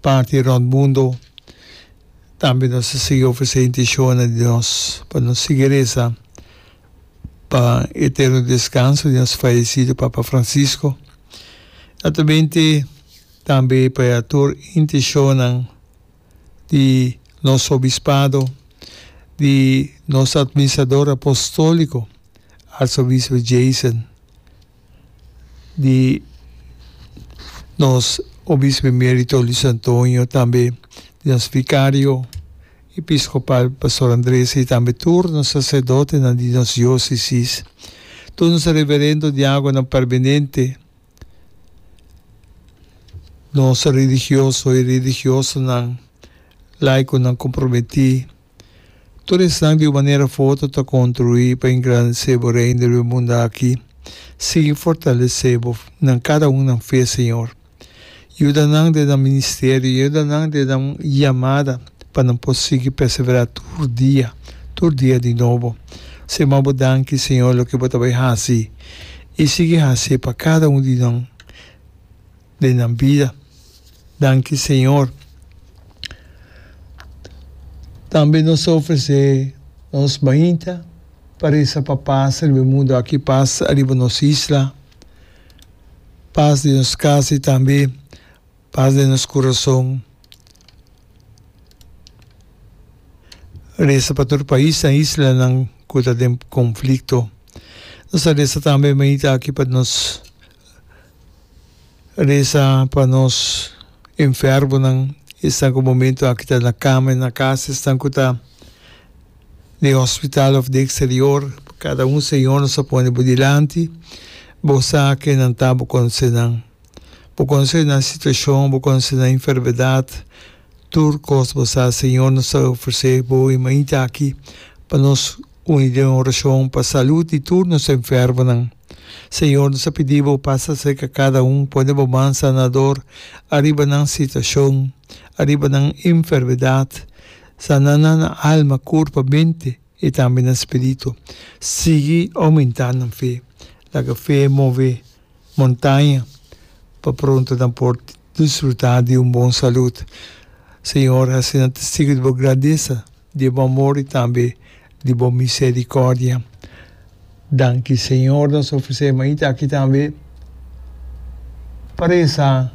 parti rond mundo, tambe nos a sigui ofresé intishonnan di nos pa nos sigui resa pa e eterno deskanso di nos fayesido Papa Francisco, atamente tambe pa e tur intishonnan di nos Obispado, di nos Atministrador Apostolico, Arsobispo Jason. di nos Obispo Emerito Luis Antonio, tambe di nos Vicario Episcopal Pastor Andres y tambe tur nos Sacerdotenan di nos Diocesis, tur nos Reverendo Diagonan Permenente, nos Religioso y Religiosonan, Laiconan Comprometi, Tur esnan di un manera of otro ta construi pa engrandece Bo Reino riba e munda aki. Sigui fortalece Bo nan cada un nan fe, Señor. Yuda nan den nan ministerio, yuda nan den nan yamada pa nan por sigui persevera tur dia, tur dia di nobo. Señor, Bo danki, Señor, loke Bo ta bay haci y sigui haci pa cada un di nan. den nan bida. Danki Señor. Tambe nos ta ofresé nos mainta pa resa pa pas riba e mundu aki, pas riba nos isla, pas den nos kas i tambe pas den nos kurason. Resa pa tur paisnan, islanan ku ta den konflikto. Nos ta resa tambe mainta aki pa nos. Resa pa nos enfermonan, esnan ku momentu aki ta na kama i na kas, esnan ku ta den hospital òf den eksterior, kada un Señor nos a pone bo dilanti, bo sa ke nan ta, bo konosenan. Bo konosenan situashon, bo konosenan enfermedat, Tur kos bo sa, Señor, nos ta ofrece bo e mainta aki pa nos uni den un oracion pa salud di tur nos enfermonan. Señor, nos ta pidi bo pasa cerca cada un, pone bo man sanador ariba nan situacion, ariba nan enfermedad. Sana nan na alma, curpa, mente y tambe na spirito. Sigui aumenta nan fe. Laga fe move montaña pa pronto nan por. Disfrutá di un bon salud. Señor, asina Testigu di Bo gradesa di e Bo amor i tambe di Bo miserikòrdia. Danki, Señor, nos ofresé mainta aki tambe pa resa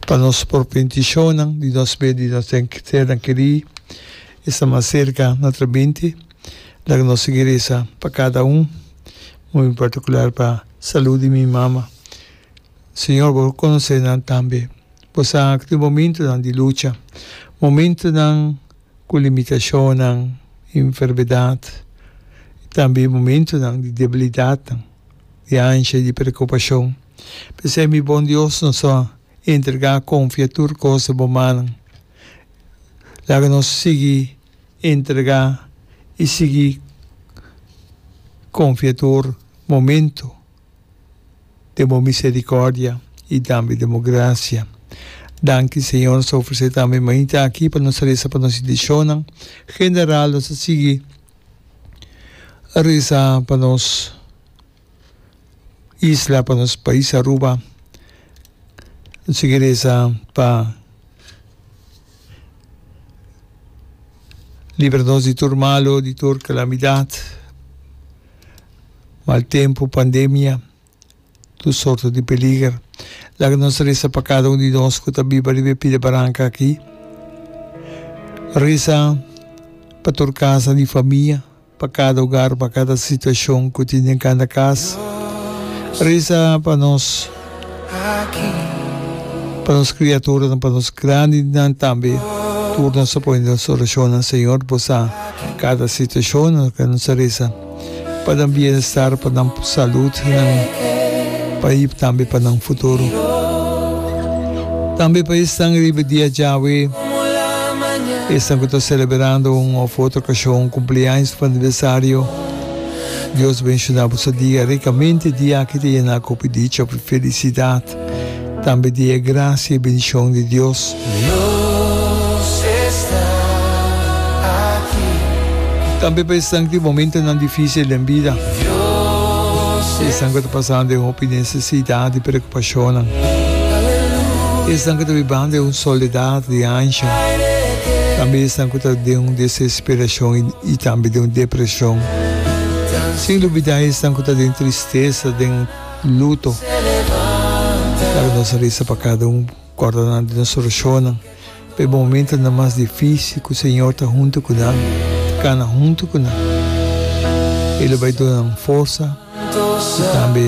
pa nos propio intishonnan, di nos mes, di nos sernan kerí. Esta mas serka na tra binti. Laga nos sigui resa pa kada un, muy en partikular pa salud di mi mama. Señor, bo lo conoce nan tambe. Bo sa cu tin momentonan di lucha, momentonan cu limitacionnan, enfermedad, y tambe momentonan di debilidadnan, di ansia y di preocupacion. P'esey, mi bon Dios, nos a entrega, confia tur cos den bo mannan. Laga nos sigui entrega y sigui confia tur momento. den bo misericordia y tambe den bo gracia. Danki Señor nos ta ofrece tambe mainta aki pa nos reza pa nos intencionnan general nos ta sigui reza pa nos isla pa nos pais Aruba nos sigui reza pa libra nos di tur malo di tur calamidad. Mal tempu, pandemia, tur sorto di peliger. Laga nos resa pa kada un di nos ku ta biba riba e pida baranka aki. Resa pa tur kasa di famia, pa kada ogar, pa kada situashon ku tin den kanda kas. Resa pa nos. Pa nos kriaturanan, pa nos grandinan tambe, tur nos a pone nos orashonnan. Señor, Bo sa kada situashonnan ku nos a resa, pa nan bienestar, pa nan salut, i tambe pa nan futuro. Tambe pa esnan riba dia djawe, esnan ku ta selebrando un òf otro okashon, kumpliaños òf aniversario. Dios benshuna bo sa dia ricamente, dia aki ta yena cu hopi dicha cu felicidad, tambe dia e gracia y bendicion di Dios. Tambe pa esnan cu tin momentonan dificil den bida, y esnan cu ta pasando den hopi necesidad y preocupacionnan, y esnan cu ta bibando den un soledad di anshi, tambe esnan cu ta den un desesperacion y. I tambe den un depresion. Sin lubidá esnan ku ta den tristesa, den luto. Laga nos a resa pa kada un, kòrda nan di nos orashonnan, pa e momentonan mas difísil ku Señor ta huntu ku nan, ta kana huntu ku nan. E lo bai duna nan forsa i tambe.